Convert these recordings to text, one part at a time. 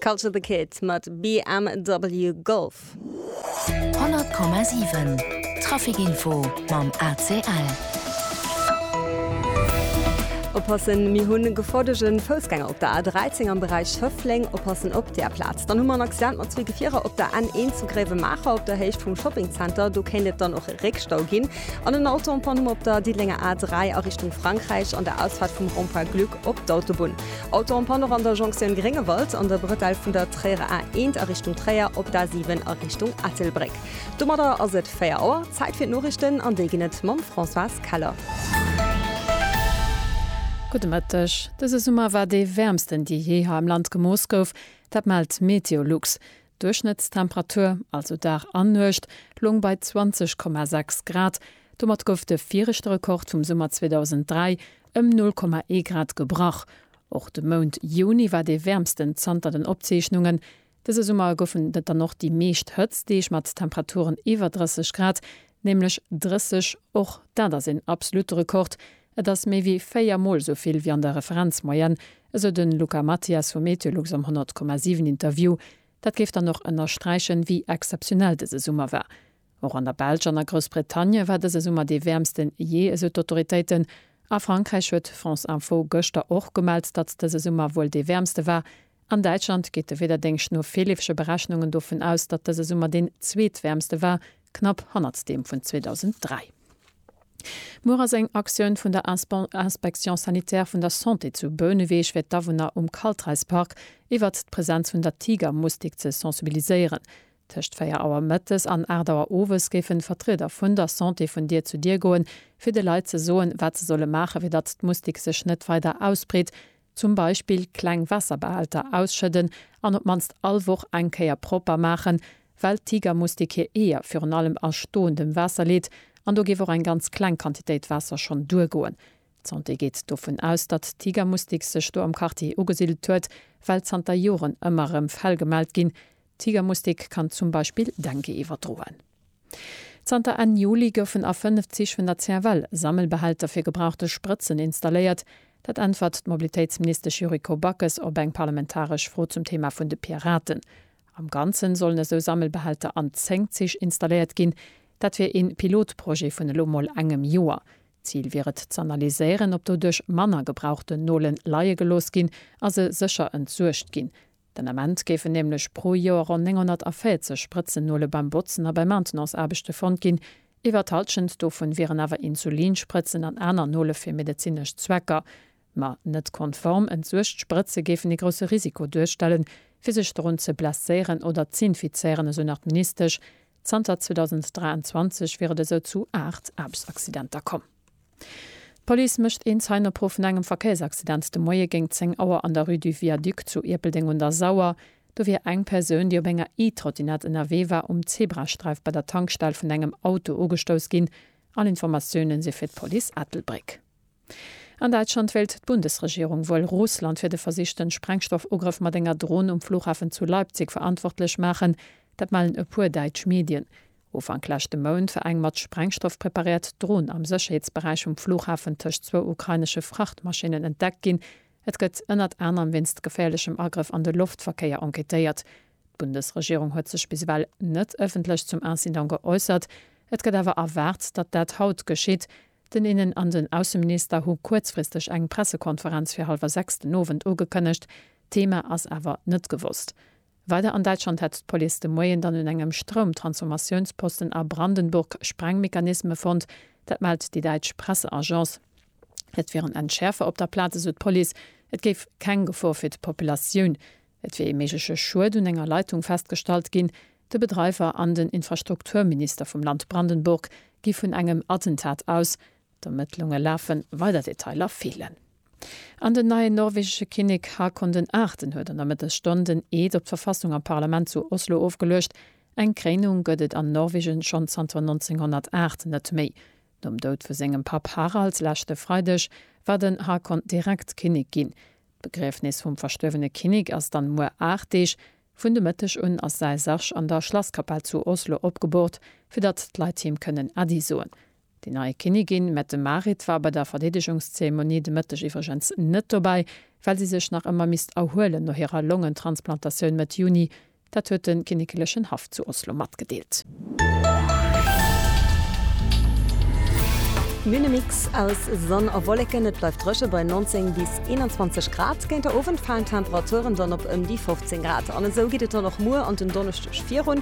Culture the Kid mat BMW Golf. 100,7 Trafikinfo mam ACL. Oppassen, Mir hunn e gefordegen Foussgänger op der A13 am Beräich Schëffleng. Oppassen op där Plaz. Dann hu mer en Accident mat zwee Gefierer op der N1 zu Gréiwemaacher op der Héicht vum Shopping Center. Do kéint et dann och e Réckstau ginn. An en Auto en panne hu mer op der Diddelenger A3 a Richtung Frankräich an der Ausfahrt vum Rond-point Glück. Op d'Autobunn Auto en panne och an der Jonktioun Gréngewald an der Brëtell vun der Tréierer A 1 a Richtung Tréier op d'A 7 a Richtung Ettelbréck. Domadder ass et 4 Auer, Zäit fir d'Noriichten an déi ginn et mam Françoise Keller. Gudde Mëtteg, Dëse Summer war dee wäermsten dee jee hei am Land gemooss gouf, dat mellt MeteoLux. D'Duerchschnëttstemperatur, also Dag an Nuecht, loung bei 20,6 Grad. Domat gouf de viregte Rekord vum Summer 2003 ëm 0,1 Grad gebrach. Och de Mount Juni war dee wäermsten zanter den Opzeechnungen. Dëse Summer goufen et dann och déi meescht Hëtztdeeg mat Temperaturen iwwer 30 Grad, nämlech 30, och dat ass een absolutte Rekord, Et ass méi wéi véier Mol esou vill wéi an der Referenzmoyenne, esou de Luca Mathias vu Meteolux am 100,7 Interview. Dat géif dann och ënnersträichen, wéi exzeptionell dëse Summer war. Och an der Belsch an a Groussbretagne war dëse Summer dee wäermste jee, esou d'Autoritéiten. A Frankräich huet France Info gëschter och gemellt, datt dëse Summer wuel dee wäermste war. An Däitschland geet de Wiederdéngscht no virleefege Berechnungen dovun aus, datt dëse Summer deen zweetwäermste war, knapp hannert deem vun 2003. Muer ass eng Aktioun vun der Inspection sanitaire vun der Santé zu Bouneweg fir d'Awunner um Kaltreispark iwwert d'Presenz vun der Tigermustik ze sensibiliséieren. Tëscht 4 Auer mëttes an 8 Auer owes géifen Vertrieder vun der Santé vun Dier zu Dier goen, fir de Leit ze soen, wat se solle maachen, fir datt d'Mustik sech net weider ausbreet, Zum Beispill kleng Waasserbehälter ausschëdden an op d'mannst all Woch eng Kéier propper maachen, well d'Tigermustik hir Eeër virun allem a stoendem Waasser leet an do géif och eng ganz kleng Quantitéit Waasser schonn duergoen. D'Santé geet dovun aus, datt d'Tigermustik sech do am Quartier ugesidelt huet, well zanter Joren ëmmer erëm Fäll gemellt ginn. D'Tigermustik kann zum Beispill Dengue iwwerdroen. Zanter Enn Juli goufen a fënnef Zich vun der CFL Sammelbehälter fir gebrauchte Sprëtzen installéiert. Dat äntwert d'Mobilitéitsministesch Yuriko Backes op eng parlamentaresch Fro zum Thema vun de Piraten. Am Ganze sollen esou Sammelbehälter an 10 Zich installéiert ginn. Dat wier ee Pilotprojet vun elo mol engem Joer. Zil wier et z'analyséieren, ob doduerch manner gebrauchten Nole leie gelooss ginn a se sécher entsuergt ginn. Den Ament géifen nämlech pro Joer ronn 940 Sprëtzennuele beim Botzen a bei Maintenanceaarbechte fonnt ginn. Iwwer d'Hallschent dovun wieren awer Insulinsprëtzen an aner Nole fir medezinesch Zwecker. Ma net konform entsuergt Sprëtze géifen ee grousse Risiko duerstellen, fir sech dorun ze blesséieren oder z'infizéieren, esou nach d'Ministesch. Zanter 2023 wier et esou zu 8 Aarbechtsaccidenter komm. D'Police mécht een Zeienopruff vun engem Verkéiersaccident de Moie géint 10 Auer an der Rue du Viaduc zu Ierpeldeng un der Sauer. Do wier eng Persoun, déi op enger E-Trottinette ënnerwee war, um Zebrasträif bei der Tankstell vun engem Auto ugestouss ginn. All Informatioune si fir d'Police Ettelbréck. An Däitschland wéilt d'Bundesregierung wuel Russland fir de versichten Sprengstoffugrëff mat enger Dron um Flughafen zu Leipzig verantwortlech maachen. Dat mellen e puer däitsch Medien. Ufank leschte Mount war eng mat Sprengstoff preparéiert Dron am Sécherheetsberäich vum Flughafen tëscht zwou ukrainesche Frachtmaschinnen entdeckt ginn. Et gëtt ënnert anerem wéinst geféierlechem Agrëff an de Loftverkéier enquêtéiert. D'Bundesregierung huet sech bis ewell net ëffentlech zum Incident geäussert. Et gëtt awer erwaart, datt dat haut geschitt. Den Innen an den Ausseminister hu kuerzfristeg eng Pressekonferenz fir hallwer sechs den Owend ugekënnegt. D'Thema ass awer net gewosst. Weider an Däitschland hätt d'Police de Moien dann un engem Stroumtransformatiounsposten a Brandenburg Sprengmechanisme fonnt. Dat mellt déi däitsch Presseagence. Et wier en Entschäerfer op der Plaz, esou d'Police. Et géif keng Gefor fir d'Populatioun. Et wier ee méigleche Schued un enger Leitung festgestallt ginn. De Bedreiwer an den Infrastrukturminister vum Land Brandenburg gi vun engem Attentat aus. D'Ermëttlunge lafen, weider Detailer feelen. An den neien norwegesche Kinnek Haakon den Aachten huet an der Mëttesstonn den Eed op d'Verfassung am Parlament zu Oslo ofgeluecht. Eng Kréinung gëtt et an Norwegen schonn zanter 1908 net méi. Nom Doud vu sengem Papp Harald leschte Freideg war den Haakon direkt Kinnek ginn. D'Begriefnis vum verstuerwene Kinnek ass dann muer 8 Deeg. Vun de Mëtteg un ass säi Sarg an der Schlasskapell zu Oslo opgeboort, fir datt d'Leit him kënnen Äddi soen. Déi nei Kinnigin Mette Marit war bei der Verdeedegungszeremonie de Mëtteg iwwregens net dobäi, well si sech nach ëmmer misst erhuelen no hirer Longentransplantatioun Mëtt Juni. Dat huet de kinnekelechen Haff zu Oslo matgedeelt. Minne Mix aus Sonn a Wolleken, et bleift dréche bei 19 bis 21 Grad. Géint der Owend falen d'Temperaturen dann op ëm déi 15 Grad an esou geet et dann och muer an den Donneschdeg virun.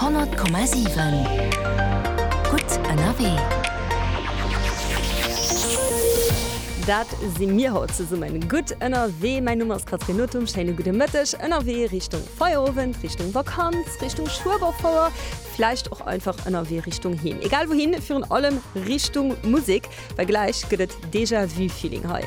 Honnert Komma siwen, gutt ënnerwee! Dat si mir haut zesummen gutt ënnerwee. Mäin Numm ass Catherine Nothum. Schéine gudde Mëtteg. Ënnerwee Richtung Feierowend, Richtung Vakanz, Richtung Schueberfouer, vläicht och einfach ënnerwee Richtung Heem. Egal wouhin, virun allem Richtung Musek, well gläich gëtt et Déjà-vu-Feeling hei.